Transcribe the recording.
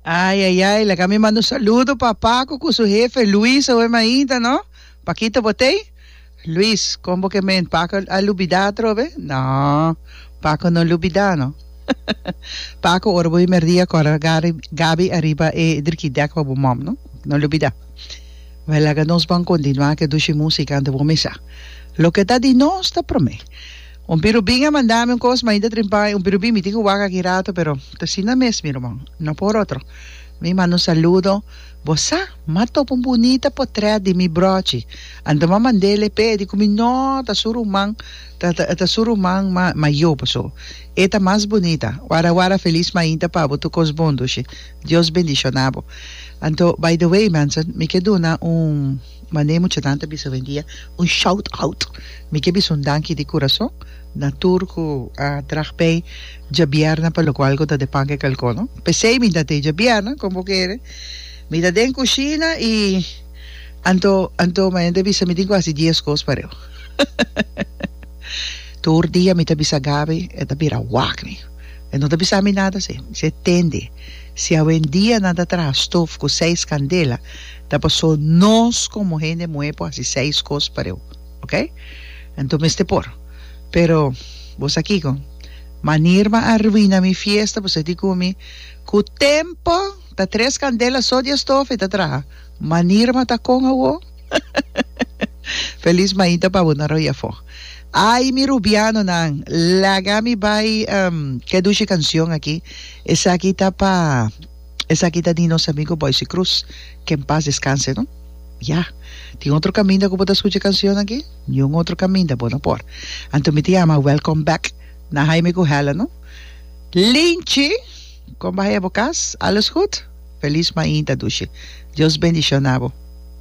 Ai ai ai, laga mi manda un saludo pa Paco cu su jefe Luis awe mainta, no? Paquito Botey? Luis, con bo kemen? Paco a lubida atrobe? No, Paco no lubida, no. Paco, ora bo himerdia cora Gary, Gaby arriba e drikidek pa bo mom, no? No lubida. Wel, laga nos ban continua cu e dushi musica anto bo misa. Loke ta di nos ta prome. Un pirubin a manda mi un kos ma ainda trimpa un pirubin mi tin ku wak aki rato pero ta asina mes mi ruman no por otro mi manda un saludo bo sa mi a topa un bunita potrèt di mi brochi anto mi a mand'el e pe e di ku mi no ta su ruman ta ta ta su ruman ma mayo paso e ta mas bunita wara wara felis mainta pa bo tur kos bon dushi Dios bendishona bo anto by the way mense mi ke duna un. Manera muchanan ta bisa hoendia, un shout out. Mi ke bisa un danki di kurason na tur ku a traha pei djabièrnè pa lo ku algu ta den pan ke kalkò, no? P'esei mi ta tei djabièrnè, kon bo kere, mi ta den kushina i anto anto manera ta bisa mi tin ku hasi dies kos pa reu. Tur dia mi ta bisa Gabi, e ta bira wak mi. E no ta bisa mi nada, mi se, tende, si hoendia nan ta traha stof ku seis kandela, Ta pasó nos como hende muhe por haci seis cos pa reu, ok? Anto mester por. Pero bo sa kico? Manir bo a arruina mi fiesta, bo sa di cu mi, Cu tempo ta tres candela so di estofa y ta traha. Manir bo ta con awo? Feliz mainta pa bo na roi afo. Ay mi Rubianonan, laga mi bay ke dushi cancion aki. Esaki ta pa. Esaki ta di nos amigo Boyce Cruz, ke en pas descanse no. Ya. Tin otro caminda cu bo ta scucha e cancion aki? Niun otro caminda bo no por. Anto mi ta yama welcome back na Jaime cu Helen no. Linchi! Con bahaye bo cas? Alles goed? Feliz mainta dushi. Dios bendiciona bo.